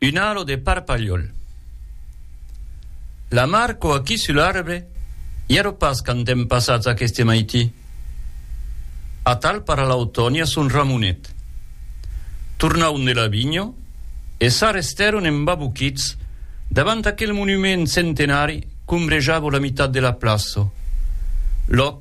Un alo de parpalhòl. La mar cò aquí sul arbre i ero pas quand èm passats aqueste maití. Atal para l'autòni a son ramonet. Tornaun de la vinho e s'arrestèron embaboquits davant aquel monument centenari qu'ombrejava la mitat de la plaço, lòc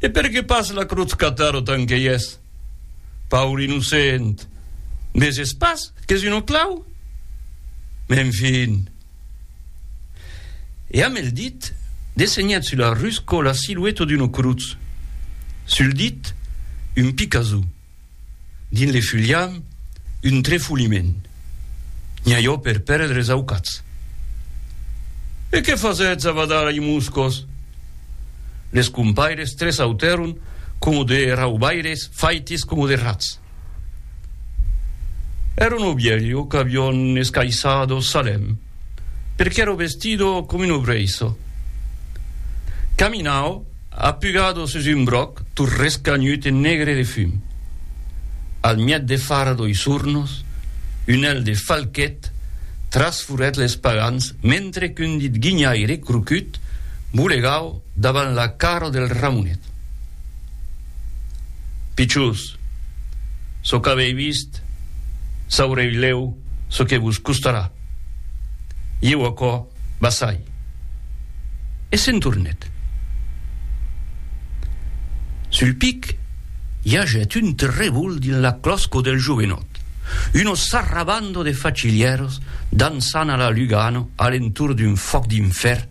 E per qué pas la crotz catar autant qu'ei eth paur innocent? Veses pas qu'es un oclau? Mès enfin! E amb el dit dessenhat sus la rusco la silueta d'una crotz, sul dit un picazou. Dins le fuliam, un trefoliment. Nhaiò per pèrdre es aucats. E qué fasètz a badar i moscos? Les compaires tresautèron coma de raubaires faites coma de rats. Èra un obielho qu'avion escaissado Salèm. perque ero vestido com un obreiso. Caminau apugado sus un bròc tot rescanhut e negre de fum. Al mièt de fara doi sornos, un hèl de falquet trasfurèt les pagans mentre qu'un dit guinhaire crocut bolegau davant la cara del Ramonet. Pichós! Çò qu'avèi vist, saurèi lèu çò que vos costarà. Ieu aquò basai. E se'n tornèt. Sul pic i agèt un trevol dins la clòsco del jovenòt, uno sarrabando de facilièros dansant a la Lugano a l'entorn d'un fòc d'infèrn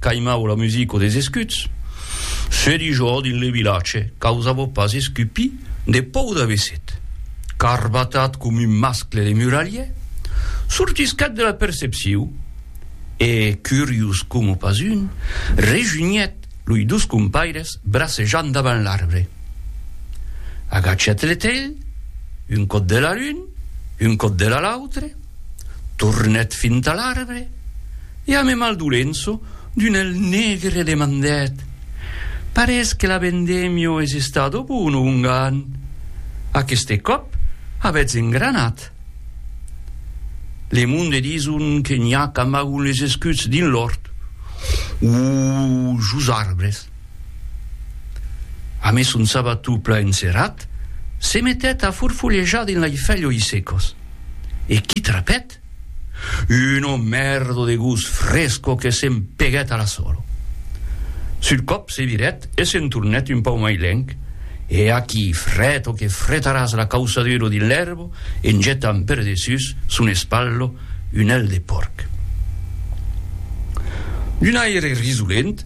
Caimau la musico des escuts. Se di jo dins le vilatge qu'ausavo pas escupi de pòu d'avesèt. Carbatat com un mascle de muralhe, sortisquèt de la percepciu e, curius coma pas un, rejunhèt loi dos compaires bracejant davant l'arbre. Agachèt le telh, un còt de la l'un, un còt de la l'autre. Tornèt fins a l'arbre e a me Maldolenço d'un èl negre demandèt, Parés que l'abendemio es estado bono ongan, aqueste còp avètz engranat. Le monde dison que n'i a qu'amagon les escuts dins l'òrt. Uu, jos arbres! A mes son sabato pla enserrat, se metèt a forfolejar dins lei felhoi secos. E qui trapèt? Un omèrdo de gos fresco que se'n peguèt a la solo. Sul còp se virèt e se'n tornèt un pauc mai lenc, e aquí freto que fretaràs la causaduro dins l'èrbo en jetant per dessús son espallo un hèl de pòrc. D'un aire risolent,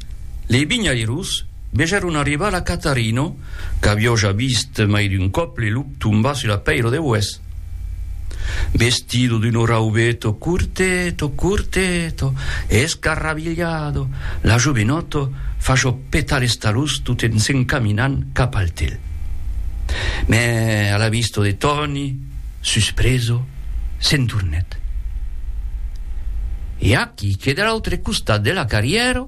Les vinhairos vegèron arribar la Catarino, qu'avió ja vist mai d'un còp le lup tombar sus la pèira de Hues. Vestido d'uno raubeto curteto, curteto e escarrabilhado, la jovenòto fació petar les talons tot en s'encaminant cap al tel. Mès a la vista de Tòni, suspreso, se'n tornèt. E aquí que de l'autre costat de la carrièra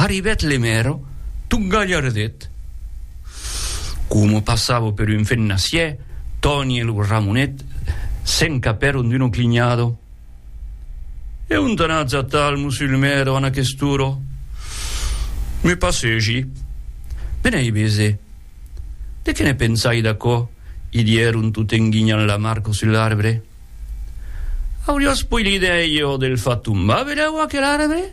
arribèt Lemèro tot galhardet. Coma passava per un fennassièr, Tòni e lo Ramonet se'n capèron d'una clinhada. E ont anatz atal, mossur Lemèro, an aquest'ora? Me passegi. Benèi bese. De qué ne pensai d'aquò? i dieron tot en guinhant la marco sus l'arbre. Auriós poi l'idèi jo del far tombar, vedèu aquel arbre?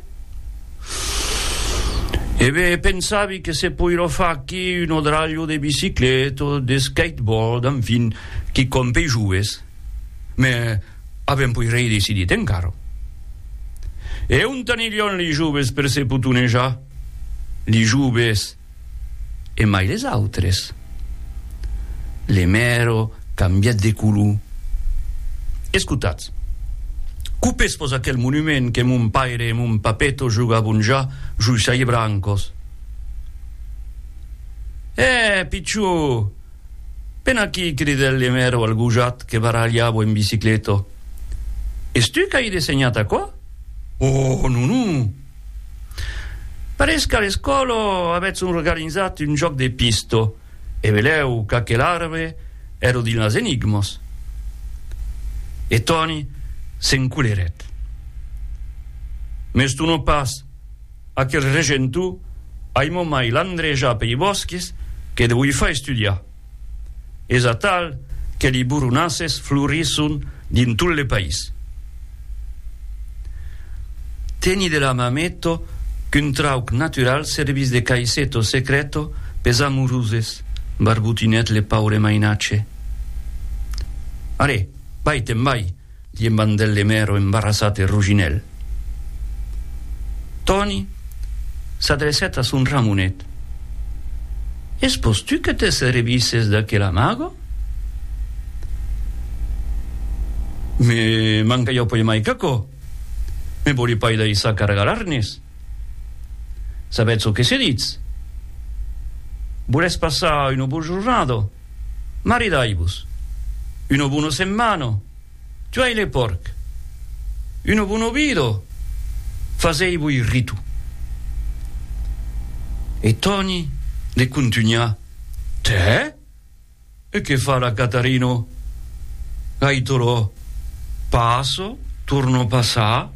E be, pensavi que se poiró far aquí un odralho de bicicleta o de skateboard, enfin, quicòm pei joves. Me avèm poi rei decidit encara. E ont aniríon li joves per se potonejar? Li joves? e mai les autres. Le mèro cambièt de color. Escotatz, copés vos aquel monument que mon paire e mon papeto jogabon ja joi saie brancos. È, pichó! Ven aquí, cridèt le mèro al gojat que barralhava en bicicleta. Es tu qu'ai dessenhat aquò? Oh, non, non! Parés qu'a l'escòla avètz organizat un jòc de pista e velèu qu'aquel arbre ère dins las enigmas. E Tòni s'encolerèt. M'estona pas, aquel regentor ai momai l'andrejar pei bòsques que deuifa estudiar. Es atal que li boronasses florisson dins tot le país. Teni de la mameto qu'un trauc natural servís de caiseto secreto pes amoroses, barbotinèt le paure mainatge. Arè, vai-te'n vai! Diem Bandèl de Mèro embarrasat e roginèl. Tòni s'adrecèt a son Ramonet. Es pòs tu que te servisses d'aquel amago? Me manca ja puèi mai qu'aquò. Me vòli pas daissar cargar l'arnés. Sabètz çò que se ditz? Volètz passar una bojornada? Maridai-vos. Uno buno semmano. Tuai le pòrc. Uno buno vido. Fasei-voi ritu. E Toni le contunhà, Tè? E que fa la Catarino? Gaitolò, Passo, torno passar.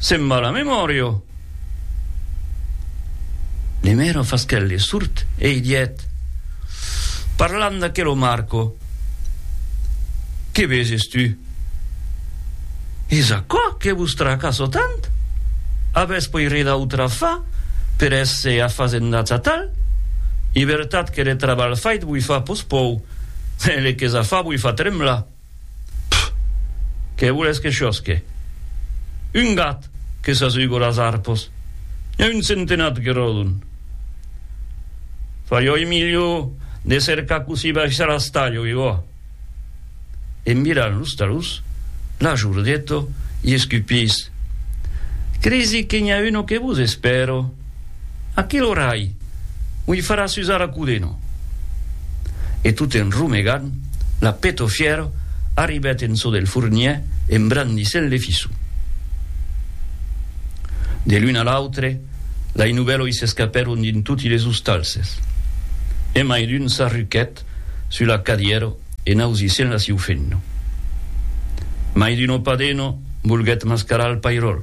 Se'n va la memòria! Le mèra fasquèt le surt e i dièt, parlant d'aquelo Marco, Que veses tu? Es aquò que vos tracasso tant? Avètz poi re d'autra fa per èsser afasendats atal? I vertat que le trabalh fait voi fa pospòu, e le que s'a fa voi fa tremblar! Pff! Qué voles que chòsque? Un gat que s'asugo las arpos, n'i a un centenat que ròdon. Farioi milhor de cercar cossí baishar a Stallo, que gòa! En virant los talons, la Giurdeto i escupís, Cresi que n'i a uno que vos espèro! Aquel orai m'ui farà susar a codeno! E tot en romegant, la petofièra arribèt en çò del fornièr en brandissent le fissu. De l'un a l'autre, lai novèloi s'escapèron dins toti les ostalses, e mai d'un s'arruquèt sus la cadièra en ausissent la siufenna. Mai d'un opadeno volguèt mascarar al pairòl.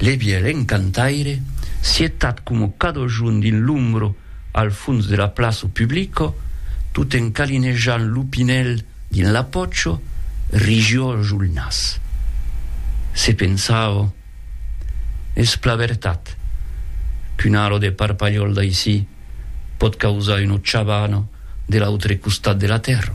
Le vielen cantaire, sietat coma cada jorn dins l'ombra al fons de la plaça publica, tot en calinejant lo pinèl dins la pòcha, rigió jo lo nas. Se pensava, Es plan vertat qu'una ala de parpalhòl d'aicí pòt causar una chabana de l'autre costat de la tèrra.